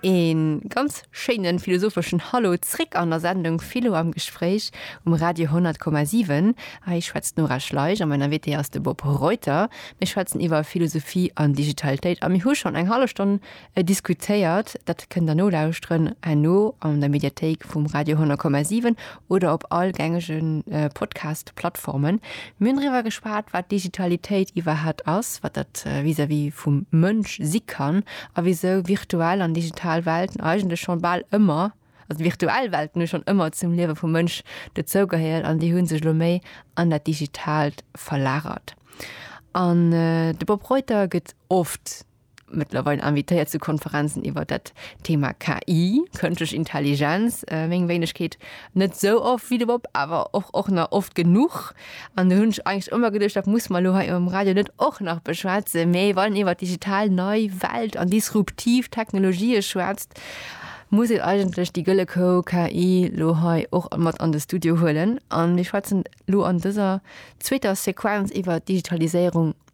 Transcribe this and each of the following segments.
Een ganz schéinen philosopheschen Hallo zréck an der Sendung Philo am Gespréich um Radio 100,7. Hei schwätzt d'Nora Schleich a mäin Invité ass de Bob Reuter. Mir schwätzen iwwer Philosophie an Digitalitéit a mir hu schonn eng hallef Stonn diskutéiert. Dat kënnt der nolauschteren herno an der Mediathéik vum Radio 100,7 oder op all gängege Podcast-Plattformen. Mir hunn driwwer geschwat, wat Digitalitéit iwwerhaapt ass, wat dat vis-à-vis vum Mënsch si kann a wisou virtuell an digital Welten eigentlech schonn bal ëmmer, also virtuell Welten hu schonn ëmmer zum Liewe vum Mënsch dezougeheiert an déi hu sech elo méi an dat Digitaalt verlagert. An de Bob Reuter gëtt oft, mëttlerweil invitéiert zu Konferenzen iwwer dat Thema KI, kënschtlech Intelligenz, äh, meng Wéinegkeet net so oft wie de Bob, awer och och nach oft genuch. An du hunsch eigentlich ëmmer geduercht, dat muss man lo hei am Radio net och nach beschwätzen, méi wann iwwer digital nei Welt an disruptiv Technologië schwätzt, muss een eigentlech déi gëlle Kou KI lo hei och mat an de Studio huelen. An mir schwätzen lo an dëser zweeter Sequenz iwwer Digitaliséierung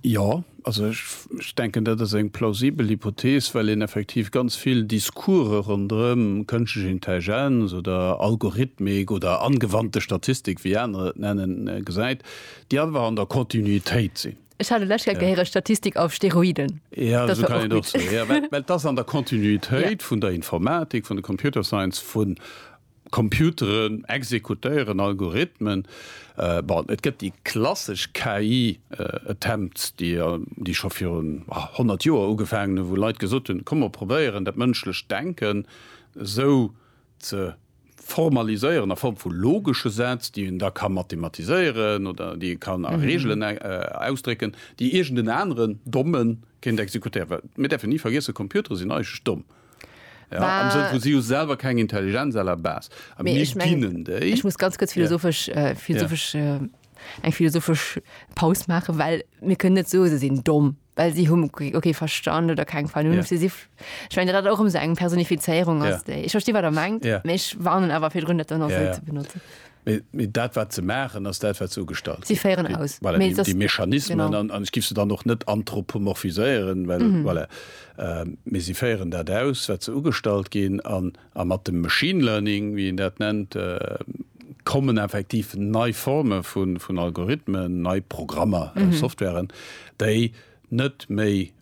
Jo, also ech denken, dat ass eng plausibel Hypothees, well een effektiv ganz vill Discourse ronderëm kënschtlech Intelligenz oder Algorithmik oder angewandte Statistik, wéi anerer et nennen, gesäit, déi einfach an der Kontinuitéit sinn. Ech hat elo d'lescht Kéier gehéiert, Statistik auf Steroiden. Jo, esou kann een et och soen. Mä et ass an der Kontinuitéit vun der Informatik, vun der Computer Science, vun Computeren exekutéieren Algorithmen. Bon, et gëtt déi klassesch KI-Attempts, déi scho virun honnert Joer ugefaangen hunn, wou Leit gesot hunn, komm mer probéieren dat mënschlecht Denken esou ze formaliséieren a Form vu logesche Sätz, déi een da ka mathematiséieren oder déi ee kann a Reegelen ausdrécken, déi iergend en aneren Dommen kéint exekutéieren. Well mir däerfen ni vergiessen, Computere sinn eigentlech domm. Ja, am Sënn vu si hu selwer keng Intelligenz à la base. A mir ich mein, dienen déi. Ech muss ganz kurz philosophesch, ja. äh, philosophesch ja. äh, eng philosophesch Paus machen, well mir können net so se sinn domm, well sie hun okay verstand oder keng Vernunft. Ja. Sie, ich mein, dat och um se eng Personifizierung ass ja. déi. Ech verstehe wat der mengt, ja. méch warnen awer fir Gründe dann ja. ze benutzen. Mee dat, wat se maachen, ass dat, wat se ugestalt ginn. Si féieren aus. Voilà, déi, déi Mechanismen. An, an ech giff se dann och net anthropomorphiséieren, well, voilà. Mee si féieren dat aus, wat se ugestalt ginn. An, a mat dem Machine Learning, wéi een dat nennt, kommen effektiv nei Forme vun, vun Algorithmen, nei Programmer, Softwaren, déi net méi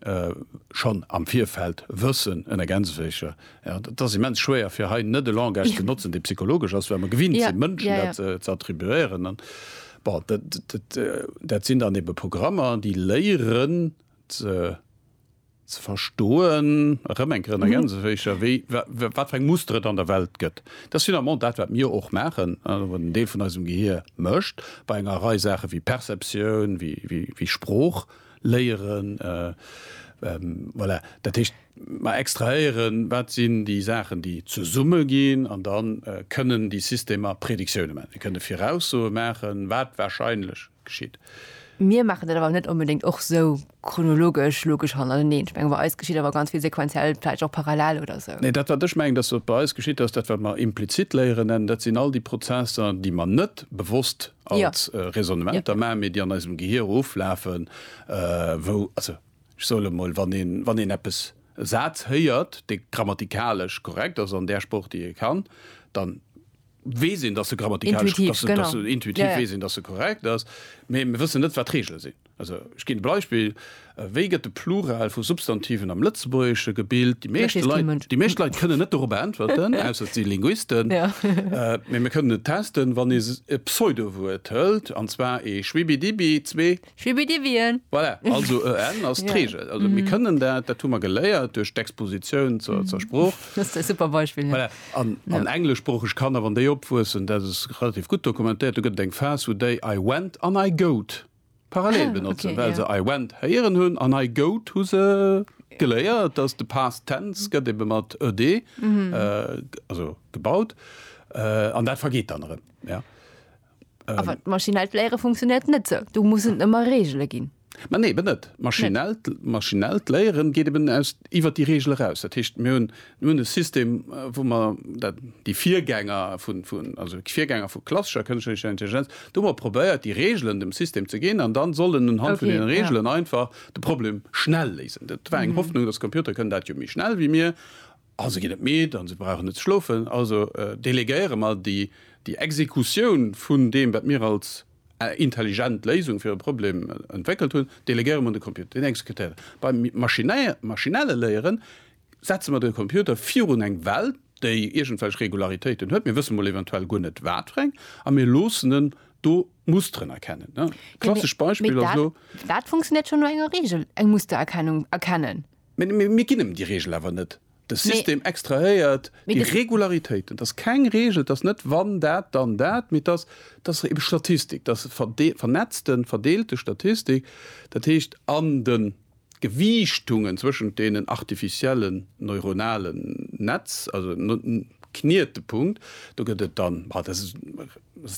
schonn am Virfeld wëssen, en ergänzécher, ja, et ass immens schwéier fir hei net e Langage ze notzen, dee psychologesch ass, well mer gewinnt sinn, Mënschen dat ze attribuéieren. An, bon, dat sinn dann ebe Programmer, déi léieren ze verstoen, erëm eng Kéier en ergänzécher, wéi, wat fir eng Muster et an der Welt gëtt. Dat ass finalement dat, wat mir och maachen, wat en Deel vun eisem Gehier mécht bei enger Rei Saachen, wéi Perceptioun, wéi Sprooch léieren. Voilà, dat heescht, mer extrahéieren, wat sinn déi Saachen, déi zesumme ginn, an da kënnen déi Systemer Predictiounen maachen. Déi kënnen Viraussoe maachen, wat warscheinlech geschitt. Mir maachen dat awer net onbedéngt och esou chronologesch, logesch hannerteneen. Ech mengen, bei eis geschitt awer ganz vill sequenziell, vläicht och parallel oder esou. Nee, dat wat ech mengen, dass wat bei eis geschitt ass, dat wat mer implizit Léieren nennen, dat sinn all déi Prozesser, déi mer net bewosst als Raisonnementer maachen, mee déi an eisem Gehir oflafen, wou, also ech soe mol, wann een, wann een eppes, e Saz héiert, dee grammatikalesch korrekt ass an där Sprooch, déi ee kann, dann, weess een, datt se grammatikalesch, intuitiv, datt, genau. Datt, intuitiv yeah. weess een, datt se korrekt ass, mee mir wëssen net, wat d'Regele sinn. Also ech ginn Beispill, äh, wéi gëtt de Plural vu Substantiven am Lëtzebuergesche gebild? Déi meeschte Leit, déi meescht Leit kënne net dorup äntwerten, ausser si Linguisten. Ja. äh, mee mir kënnen et testen, wann e e Pseudowuert hëlt, an zwar e Schwibidibi, zwee Schwibbidiwien. Voilà, also e n ass d'Reegel. Also mir kënnen dat, dat hu mer geléiert duerch d'Expositioun zur, zur Sprooch. Dat ass e super Beispill, jo. Voilà, an, an engleschsproocheg Kanner, wann déi opwuessen, dat ass relativ gutt dokumentéiert, do gëtt et eng Phas, wou déi I went an I goat parallel benotzen, well se I went héieren hunn an I goat hu se geléiert, dass de Past Tense gëtt ebe mat ed, also gebaut, an dat vergeet dann erëm, ja. Awer ähm, d'maschinellt Léiere funktionéiert net sou. Du muss et ëmmer Regele ginn. Ma nee, eben net. Maschinellt, maschinellt Léieren geet eben aus iwwer déi Regel eraus. Dat heescht, mir hunn hunn e System, äh, wou mer dat déi Virgänger vun, vun also d'Virgänger vu klassescher kënschlecher Intelligenz, do hu mer probéiert, déi Regelen dem System ze ginn an dann soll en unhand vun Okay, deenen ja. Regelen einfach de Problem schnell léisen. Dat war eng Hoffnung, dass Computer kënnen dat jo méi schnell wéi mir. A se ginn net midd a se brauchen net ze schlofen. Also delegéiere mer déi Exekutioun vun deem, wat mir als intelligent Léisung fir e Problem entwéckelt hunn, delegéiere mer un de Computer. Deen exekutéiert et. Beim maschinelle Léiere setze mer de Computer virun eng Well, déi iergendwelch Regularitéiten huet, mir wësse mol eventuell guer net wat fir eng, a mir loossen en do Musteren erkennen. Klassesch Beispill ass elo. Mee dat funktionéiert schonn no enger Reegel, eng Mustererkennung erkennen. Mee mir ginn em déi Reegel awer net. De System extrahéiert déi Regularitéiten. Et ass keng Reegel, et ass net wann dat, dann dat, mee et ass, et ass ebe Statistik, et ass vernetzte, verdeelte Statistik, dat heescht an de Gewiichtungen zwëschent deenen artificiellen neuronalen Netz, also Knietepunkt, do gëtt et dann, dat ass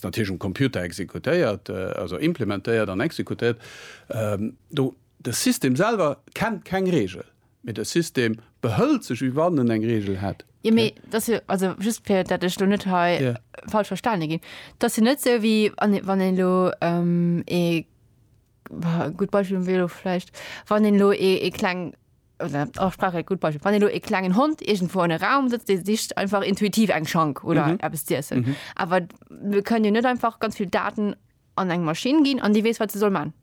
natierlech um Computer exekutéiert, also implementéiert an exekutéiert do. De System selwer kennt keng Regel, mee de System behëlt sech wéi wann en eng Regel hätt. Jo, mee et ass jo, also just fir datt ech elo net hei falsch verstane ginn, et ass jo net esou wéi wann een elo ee, boah, e gutt Beispill wier elo vläicht, wann een elo ee kleng, oder och brauch ee gutt Beispill, wann een elo ee klengen Hond iergendwou an e Raum sëtzt, dee sicht einfach intuitiv eng Schank oder eppes z'iessen. Awer mir kënnen jo net einfach ganz vill Daten an eng Maschinn ginn an déi weess wat se soll man.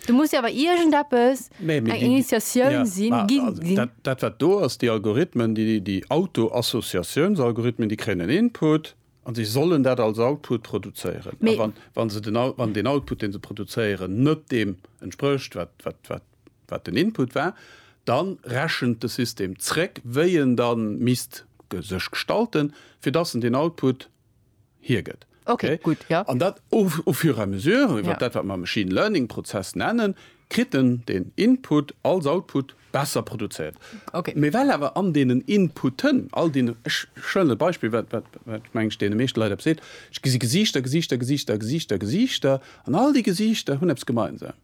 Du muss ja awer irgendeppes eng Initiatioun si ginn. Dat wat do ass déi Algorithmen, déi déi Autoassociatiounsalgorithmen, déi kréien en Input an déi sollen dat als Output produzéieren. Wann se den wann deen Output deen se produzéieren net deem entsprécht wat wat wat wat den Input war, dann rechent de System zréck wéi en dann misst sech gestalten fir dass en deen Output, hiergëtt. Okay, gutt, jo. An dat au fur et à mesure, iwwert dat wat mer Machine Learning Prozess nennen, kritt en deen Input als Output besser produzéiert. Okay. Mee well awer an deenen Inputen, all deenen, ech stellen e Beispill, wat, wat, wat meng ech deene meeschte Leit eppes seet, ech gesi Gesiichter, Gesiichter, Gesiichter, Gesiichter, Gesiichter, an all déi Gesiichter hunn eppes gemeinsam.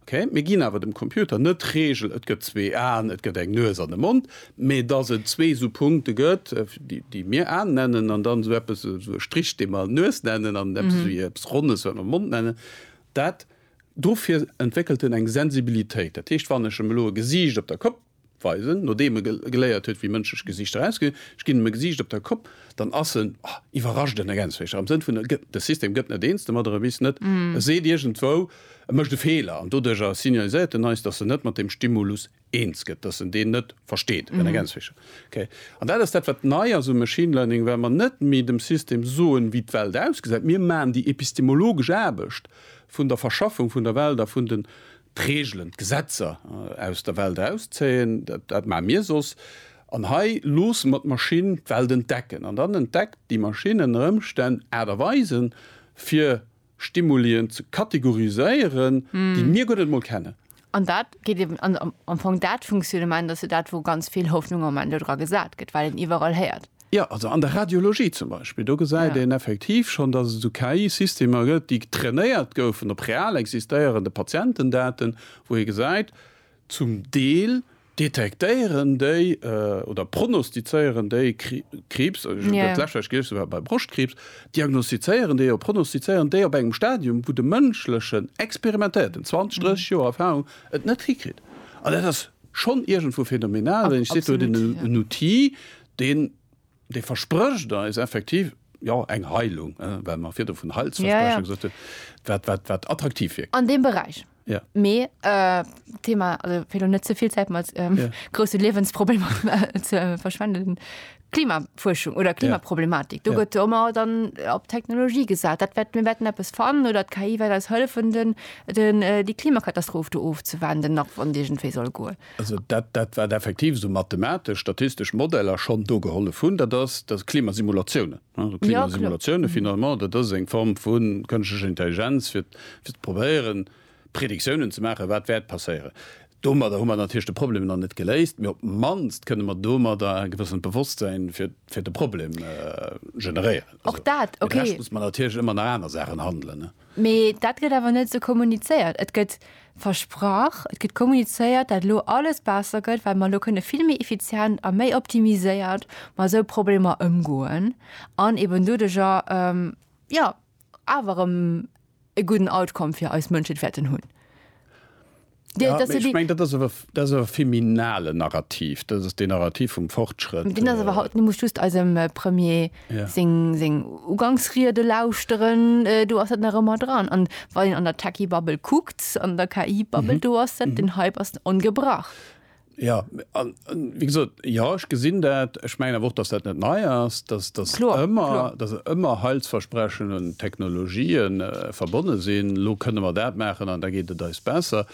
Ok, mir ginn awer dem Computer net d'Regel, et gëtt zwee Aen, et gëtt eng Nues an e Mond, mee dass et zwee esou Punkte gëtt, déi mir Aen nennen, an dann esou eppes, esou e Strich, dee mer Nues nennen, an eppes esou wéi eppes Ronnes, wat mer Mond nennen. Dat, dofir entwéckelt en eng Sensibilitéit. Dat heescht, wann ech em elo e Gesiicht op der Kopp. weisen, nodeem e geléiert huet wéi mënschlech Gesiichter ausgesinn, ech ginn em e Gesiicht op der Kopp, dann ass en, oh, iwwerrascht en ergänzt vläicht erëm, am Sënn vun e gëtt, de System gëtt net eens domadder, e weess net, e seet iergendwou, e mécht e Feeler an doduercher signaliséiert en eis, datt en net mat deem Stimulus eens gëtt, datt en deen net versteet, en ergänzt vläicht, okay. An dat ass dat wat nei ass um Machine Learning, well mer net méi dem System soen wéi d'Welt ausgesäit, mir maachen déi epistemologesch Aarbecht vun der Verschaffung vun der Welt a vun den d'Reegelen, d'Gesetzer aus der Welt erauszéien, dat maache mir soss, an hei loosse mer d'Maschinn d'Welt entdecken. An dann entdeckt déi Maschinn ënner Ëmstänn Aart a Weisen, fir Stimulien ze kategoriséieren, déi mir guer net emol kennen. An dat geet eben am Fong, dat Funktionnement, dat ass jo dat, wou ganz vill Hoffnung am Moment dodra gesat gëtt, well een iwwerall héiert, Jo, also an der Radiologie zum Beispill, do gesäit een effektiv schonn, dass et esou KI-Systemer gëtt, déi trainéiert goufen op real existéierende Patientendaten, wou ee gesäit, zum Deel detektéieren déi oder prognostizéieren déi Kriibs, dat lescht, wat ech gelies hunn, war bei Broschtkriibs, diagnostizéieren déi oder prognostizéieren déi op engem Stadium, wou de mënschlechen experimentéierten, 20, 30 Joer Erfahrung, et net hikritt. An dat ass schonn iergendwou phänomenal, wann ech sidd, do huet een en Outil, Deen, dee versprécht eis effektiv, jo, eng Heilung, well mer virdu vun Heilsverspreche gesot hunn, wat, wat, wat attraktiv wierkt. An deem Beräich. Jo. Mee d'Thema, also fir elo net ze vill Zäit mat grousse Liewensproblemer ze verschwenden, Klimafuerschung oder Klimaproblematik, do gëtt jo ëmmer dann op d'Technologie gesat, dat wäert, mir wäerten eppes fannen oder d'KI wäert eis hëllefen, den, déi Klimakatastroph do ofzewenden, nach wann se iergendwéi soll goen. Also dat, dat wat effektiv esou mathematesch, statistesch Modeller schonn do gehollef hunn, dat ass, dat Klimasimulatiounen. Also Klimasimulatiounen, finalement, dat ass eng Form vu kënschlecher Intelligenz, fir ze probéieren, Predictiounen ze maachen, wat wäert passéieren. Domadder hu mer natierlech de Problem nach net geléist, mee op d'mannst kënne mer domadder e gewëssent Bewosstsein fir, fir de Problem generéieren. Fir de Rescht muss mer natierlech ëmmer nach aner Saachen handelen. Mee dat gëtt awer net esou kommunizéiert. Et gëtt versprach, et gëtt kommunizéiert, dat elo alles besser gëtt, well mer elo kënne vill méi effizient a méi optimiséiert mat esou Problemer ëmgoen an eben doduerjer, jo, awer erëm e gudden Outcome fir eis Mënschheet wäerten hunn. Ja, dass ech meng dat ass awer dat ass awer feminale Narrativ, dat ass deen Narrativ vum Fortschrëtt. Deen ass awer haut, du muss just eisem Premier ja. seng seng Ugangsriede lauschteren, äh, do ass dat nach ëmmer dran an wann en an der Techie Bubble kuckt an der KI Bubble mhm. do ass dat mhm. den Hype ass ongebrach. Ja, an, an wéi gesot, jo, ech gesinn dat. Ech mengen awer och, dass dat net nei ass, dass, dass Kloer, ëmmer, kloer. dass ëmmer Heilsversprechen un Technologië verbonne sinn, elo kënne mer dat maachen an da geet et eis besser.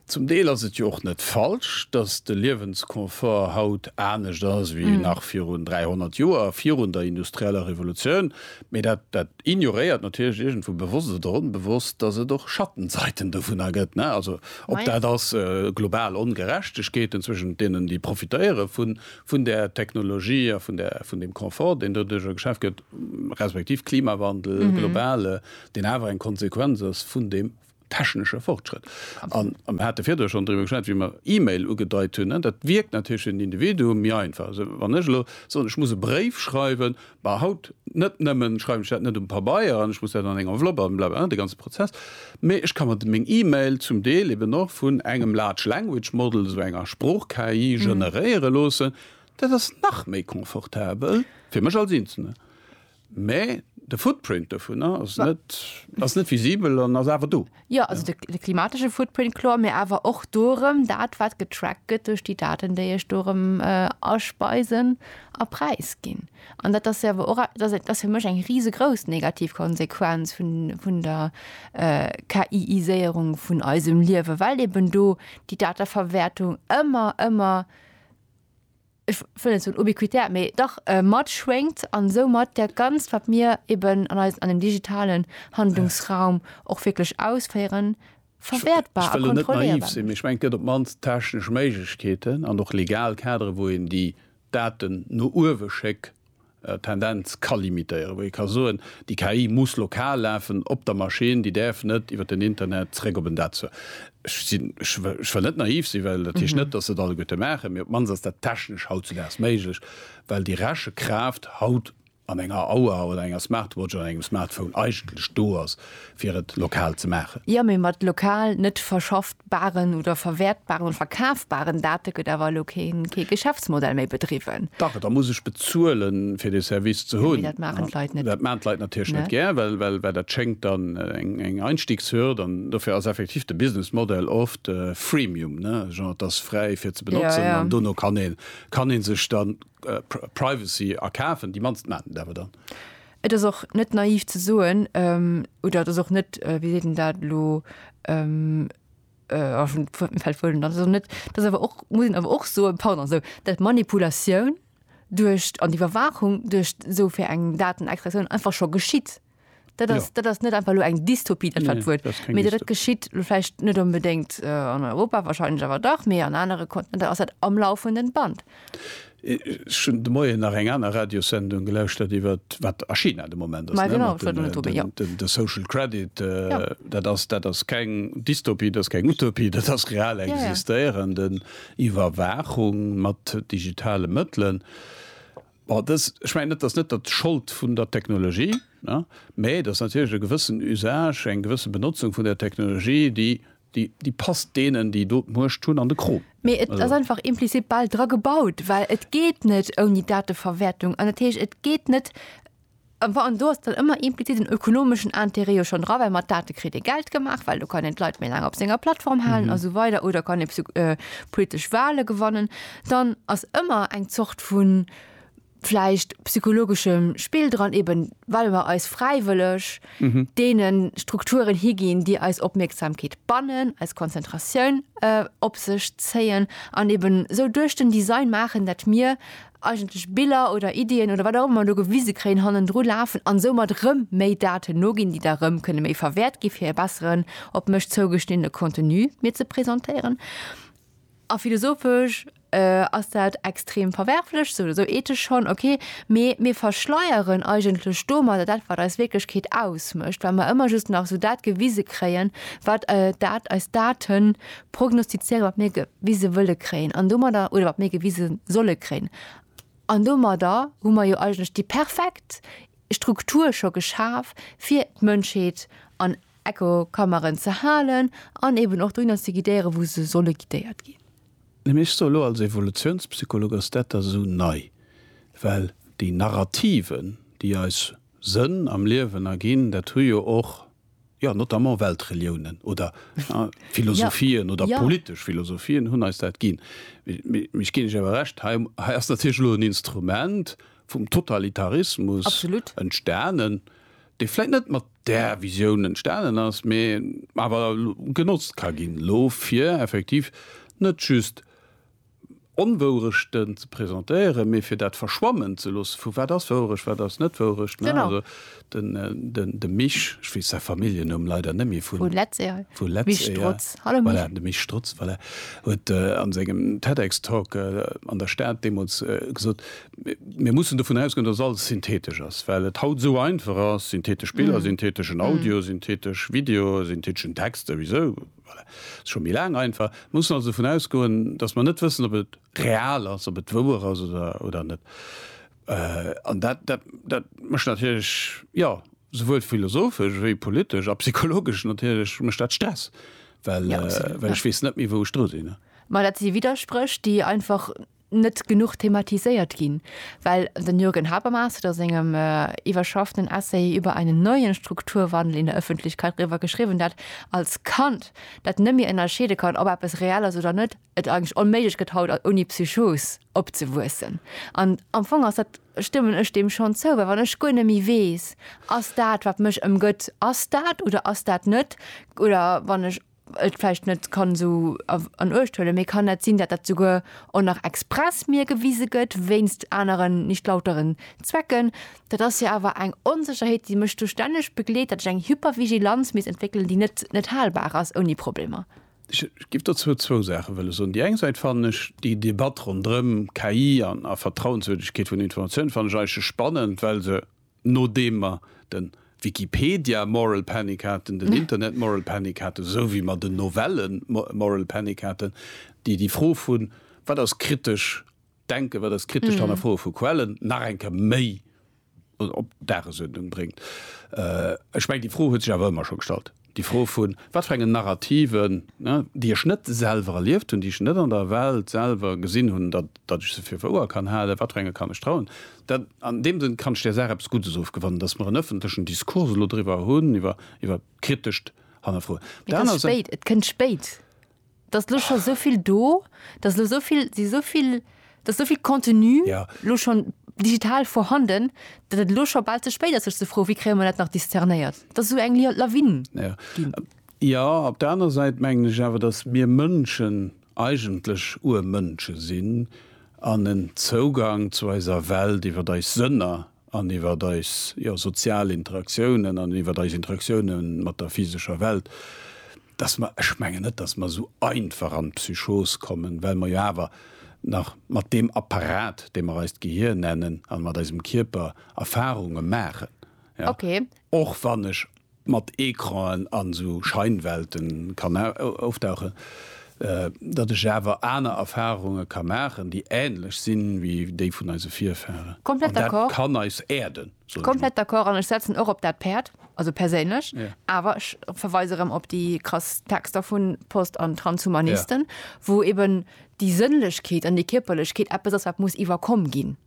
Zum Deel ass et jo och net falsch, dass de Liewensconfort haut anescht ass wéi nach virun 300 Joer, virun der industrieller Revolutioun, mee dat, dat, Ignoréiert natierlech iergendwou bewosst oder onbewosst, dass et och Schattenseiten dovunner gëtt, ne? Also, ob dat ass global Ongerechtegkeeten zwëschent deenen, déi profitéiere vun där Technologie a vun deem Confort, deen doduerjer geschaaft gëtt, respektiv Klimawandel, globale, deen awer eng Konsequenz ass vun deem technesche Fortschrëtt. An am hat de virdru schon driwwer geschwat, wéi mer E-Mail ugedeit hunn. Dat wierkt natierlech fir den Individuum méi einfach. Also wann ech elo soen, ech muss e Bréif schreiwen, bah haut net nëmme schreiwen ech dat net um Pabeier an ech muss dat an eng Enveloppe an bla bla bla, de ganze Prozess, mee ech ka mer meng E-Mail zum Deel eben och vun engem Large Language Model, esou enger Sprooch-KI, generéiere loossen. Dat ass nach méi confortabel, fir mech als Eenzelne. Mä de Footprint dovunner ass net, ass net visibel an ass awer do. Jo, also de, de klimatesche Footprint, kloer, mä awer och dorëm dat, wat getrackt gëtt duerch déi Daten, déi ech dorëm aspeisen a präisginn. An dat ass jo awer och, dat ass, dat ass fir mech eng risegrouss negativ Konsequenz vun, vun der KI-iséierung vun eisem Liewen, well eben do déi Dateverwäertung ëmmer, ëmmer. ech wëll net soen ubiquitär, mee dach matschwéngt an soumat dat Ganzt, wat mir eeben an eis an dem digitalen Handlungsraum och wierklech ausféieren, verwäertbar a kontrolléierbar mécht. Ech wëll elo net naiv sinn, mee ech mengen, et gëtt op d'mannst d'technesch Méiglechkeeten an och legal Kaderen, wou een déi Daten no uewe schéck Tendenz ka limitéieren, wou ee ka soen, déi KI muss lokal lafen op der Maschinn, déi däerf net iwwer den Internet zeréck op en Dat zur. Ech sinn, ech wëll net naiv sinn, well dat heescht net, datt se et alleguerte maachen, mee op d'mannst ass dat technesch hautzedaags méiglech, well déi Rechekraaft haut an enger Auer oder enger Smartwatch oder engem Smartphone eigentlech do ass, fir et lokal ze maachen. Jo, mee mat lokal, net verschaffbaren oder verwäertbaren oder verkafbaren Date gëtt awer elo keen, kee Geschäftsmodell méi bedriwwen. Dach, da muss ech bezuelen, fir dee Service ze hunn. Jo, mee dat maachen d'Leit net. Dat maachen d'Leit natierlech net gär, well, well, well dat schéngt dann eng Einstiegshürd. An dofir ass effektiv de Businessmodell oft Freemium, ne, genre, et ass fräi fir ze benotzen. An dono kann ee, kann ee sech dann Privacy erkafen. Déi mannst maachen et awer dann. Et ass och net naiv ze soen, oder et ass och net, wéi seet een dat elo, oh, ech hunn d'Wuert, fält d'Wuert net an, et ass och net, et ass awer och, muss een awer och soen, pardon, esou, datt d'Manipulatioun duerch, an d'Iwwerwaachung duerch esou fir eng Datenextraktioun einfach scho geschitt. Dat ass, dat ass net einfach elo eng Dystopie, dat war d'Wuert, mee dat dat geschitt, elo vläicht net onbedéngt an Europa, wahrscheinlech awer dach, mee an anere Kontinenter ass dat am laufenden Band. Ech hunn de Moien nach eng aner Radiossendung gelauschtert iwwer wat a China de Moment ass, de Social Credit. Dat ass keng Dystopie, dat ass keng Utopie, dat ass real existéierend, Iwwerwaachung mat digitale Mëttelen. Ech mengen net, dat ass net der Schold vun der Technologie, mä et ass natierlech e gewëssen Usage, eng gewësse Benotzung vun der Technologie, déi Déi passt deenen, déi do d'Muecht hunn, an de Krom. Mee et ass einfach implizit bal dra gebaut, well et geet net ouni Dateverwäertung. An dat heescht, et geet net, an do ass dann ëmmer implizit en ökonomeschen Interêt jo schonn dra, well mat Date kritt ee Geld gemaach, well do kann een d'Leit méi laang op senger Plattform halen a sou weider oder kann ee politesch Wahle gewannen. Dann ass ëmmer eng Zort vu vläicht psychologeschem Spill dran, eben well mer eis fräiwëlleg deene Strukturen higinn, déi eis Opmierksamkeet bannen, eis Konzentratioun op sech zéien an eben esou duerch den Design maachen, datt mir eigentlech Biller oder Iddien oder wat och ëmmer mer do gewise kréien, hannendru lafen an soumat erëm méi Daten noginn, déi da erëm kënne méi verwäert gi fir e besseren, op mech zougeschniddene Contenu mir ze presentéieren. A philosophesch ass dat extrem verwerflech, sou oder sou ethesch schonn, okay, mee mir verschleieren eigentlech domadder dat, wat eis Wierklechkeet ausmécht, well mer ëmmer just nach sou dat gewise kréien, wat dat eis Date prognostizéieren, wat mir gewise wëlle kréien an domadder, oder wat mir gewise solle kréien. An domadder hu mer jo eigentlech déi perfekt Struktur scho geschaf fir d'Mënschheet an Echokammeren ze halen an eben och dohinner ze guidéieren, wou se solle guidéiert ginn. Mee ech soe lo als Evolutiounspsycholog ass dat da sou nei, well déi Narrativen, déi eis Sënn am Liewen erginn, dat hu jo och, jo, notamment Weltreliounen oder philosophien oder politesch Philosophien hunn eis dat ginn. Mee ech ginn iech awer Recht, hei ass natierlech lo en Instrument vum Totalitarismus entstanen, dee vläit net mat där Visioun entstanen ass, mee awer genotzt ka ginn elo, fir effektiv net just Onwourechten ze presentéieren, mee fir dat verschwammen ze loosse vu wat ass Wourecht, wat ass net Wourecht. Also de Mich, ech weess säi Familljennumm leider net méi, vu Letzeal, voilà, de Mich Strutz, voilà, huet a sengem TEDx-Talk an der Stad deemools gesot, Mir mussen dovun ausgoen, datt alles synthetesch ass, well et haut esou einfach ass, synthetesch Biller, syntheteschen Audio, synthetesch Video, syntheteschen Text souwisou, voilà, ass scho méi laang einfach. Mir mussen also dovun ausgoen, datt mer net wëssen, ob et real ass, ob et wouer ass oder net. An dat, dat, dat mécht natierlech, jo, souwuel philosophesch wéi politesch a psychologesch natierlech mécht dat Stress, well ech weess net méi, wou ech dru sinn. Ma dat si Widderspréch, déi einfach. net genuch thematiséiert ginn, well den Jürgen Habermas huet a sengem iwwerschafften Essay über einen neuen Strukturwandel in der Öffentlichkeit driwwer geschriwwen, dat als Kand, dat net méi ënnerscheede kann, ob eppes reell ass oder net, et eigentlech onméiglech gëtt haut ouni Psychos opzewuessen. An am Fong ass dat, stëmmen ech deem schonn zou, well wann ech guer net méi weess, ass dat wat mech ëmgëtt, ass dat oder ass dat net oder wann ech, et vläicht net kann esou an Uecht huelen, mee kann dat sinn, dat dat souguer och nach express mir gewise gëtt wéinst aneren, nicht lauteren, Zwecken? Dat ass jo awer eng Onsécherheet, déi mech do stänneg begleet, datt ech eng Hypervigilanz misst entwéckelen, déi net net halbar ass ouni Problemer. Ech géif dozou zwou Saache wëlle soen. Déi eng Säit fannen ech déi Debatt ronderëm KI a Vertrauenswürdegkeet vun Informatiounen fannen ech eigentlech spannend, well se Nodeem mer den Wikipedia Moral Panic haten, den Internet Moral Panic haten, esou wéi mer den Novellen Moral Panic haten, déi déi Fro vun wat ass kritesch Denken, wat ass kritescht Hannerfroe vu Quellen nach eng Kéier méi op d'Dagesuerdnung bréngt. Ech mengen déi Fro huet sech awer ëmmer scho gestallt. Déi Fro vun, wat fir engen Narrativen, déi ech net selwer erlieft hunn, déi ech net an der Welt selwer gesinn hunn, datt ech se fir wouer kann halen, wat fir enge kann ech trauen? Dat, an deem Sënn kann ech där Saach eppes Guddes ofgewannen, datt mer en ëffentlechen Diskurs elo driwwer hunn, iwwer kritescht Hannerfroen. Et ass spéit, et kënnt spéit. dass elo scho esou vill do, dass elo esou vill, si esou vill, dass esou vill Contenu elo schonn digital vorhanden, datt et elo scho bal ze spéit ass, sech ze froen, wéi kréie mer dat nach discernéiert, dass esou eng Lawine ginn. Jo, op der aner Säit mengen ech awer, dass mir Mënschen eigentlech Urmënsche sinn an en Zougang zu eiser Welt iwwer eis Sënner an iwwert eis, jo, sozial Interaktiounen an iwwert eis Interaktiounen mat der physescher Welt, dass mer, ech mengen net, dass mer esou einfach an d'Psychos kommen, well mer jo awer nach mat deem Apparat, dee mer eist Gehir nennen, an mat eisem Kierper Erfahrunge maachen, ja, och wann ech mat Ecranen an esou Scheinwelten kann auftauche, datt ech awer aner Erfahrunge ka maachen, déi ähnlech si wéi déi vun eise Virfahren. An dat kann eis erden, soen ech mol. Komplett d'accord, an ech setzen och op dat Päerd, also perséinlech. Awer ech verweise erëm op déi krass Texter vu Post an Transhumanisten, wou eben déi Sënnlechkeet an déi Kierperlechkeet eppes ass, wat muss iwwerkomm ginn.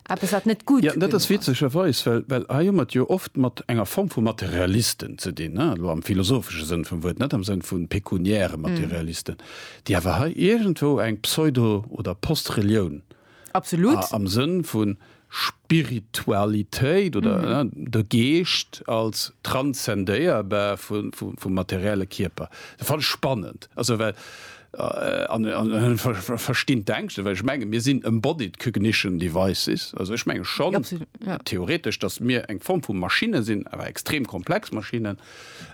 Eppes wat net gutt. Ja, dat ass witzegerweis, well, well hei hu mer et jo oft mat enger Form vu Materialisten ze dinn, ne, elo am philosophesche Sënn vum Wuert, net am Sënn vu pekuniäre Materialisten, déi awer hei iergendwou eng Pseudo oder Post-Relioun am Sënn vu Spiritualitéit oder de Geescht als transzendéierbar vum materielle Kierper. Dat fannen ech spannend, also well An ech verstinn d'Ängschten, well ech menge mir sinn embodied cognition devices. Also ech menge schonn theoretesch, datt mir eng Form vu Maschinne sinn, awer extrem komplex Maschinnen,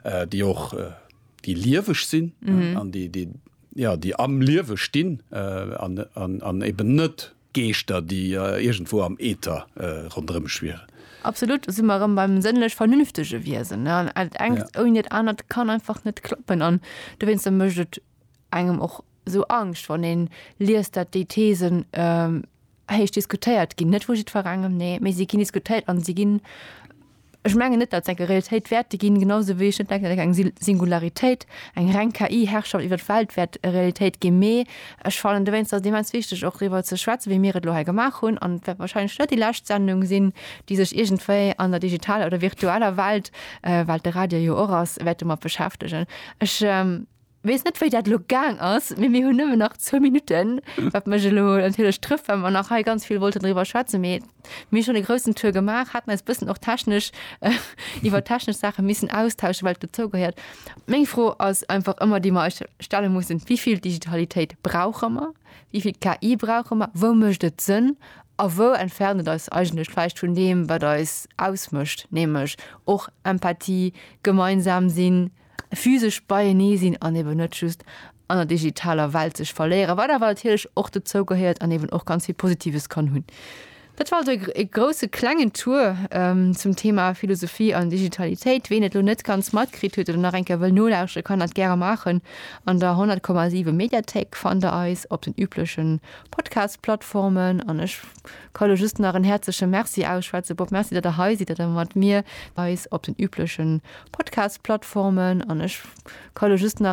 déi och déi lieweg sinn an déi am Liewe stinn an eben net, Geeschter, déi iergendwou am Äther ronderëm schwieren. Absolut, do si mer erëm beim sënnlech-vernünftege Wiesen. Dat engt ouni dat anert kann einfach net klappen. An dowéinster mécht et engem och esou Angscht, wann ee liest, datt déi Thesen héich diskutéiert ginn. Net vu jiddwerengem, nee, mee si ginn diskutéiert a si ginn Ech mengen net, datt et eng Realitéit wäerte ginn, genau sou wéi ech net denken, datt eng Singularitéit, eng reng KI-Herrschaft iwwert d'Welt wäert Realitéit ginn. Mee ech fannen dowéinst ass et immens wichteg och driwwer ze schwätzen, wéi mir et elo hei gemaach hunn. An et wäert wahrscheinlech net déi lescht Sendung sinn, déi sech iergendwéi an der digitaler oder virtueller Welt, well et de Radio jo och ass, wäerte mat beschäftegen. Ech. Wees net wei dat lo gaang ass, mee mir hunn nëmmen nach zwou Minutten, wat mech elo natierlech trëfft, well mer nach hei ganz vill wollten driwwer schwätzen, mee mir hu schonn e groussen Tour gemaach, haten eis bëssen och technesch iwwer technesch Saache missen austauschen, well et dozou gehéiert. Meng Fro ass einfach ëmmer, déi mer eis stelle mussen, Wéi vill Digitalitéit brauche mer? Wéi vill KI brauche mer? Wou mécht et Sënn a wou entfernt et eis eigentlech vläicht vun deem, wat eis ausmécht, nämlech och Empathie, gemeinsam sinn? physesch beienee sinn an eben net just an der digitaler Welt sech verléieren, wat awer natierlech och dozou gehéiert an eben och ganz vill Positives kann hunn. Dat war also e grousse klengen Tour ähm, zum Thema Philosophie an Digitalitéit. Ween et lo net ganz matkritt huet oder nach eng Kéier wëll nolauscheren, kann dat gäre maachen. An der 100,7 Mediathéik fannt der eis op den üblechen Podcast-Plattformen an ech Ka elo just nach en häerzleche Merci ausschwätzen. Bob, Merci, datt Der hei sidd, datt Der mat mir eis op den üblechen Podcast-Plattformen an ech ka elo just nach,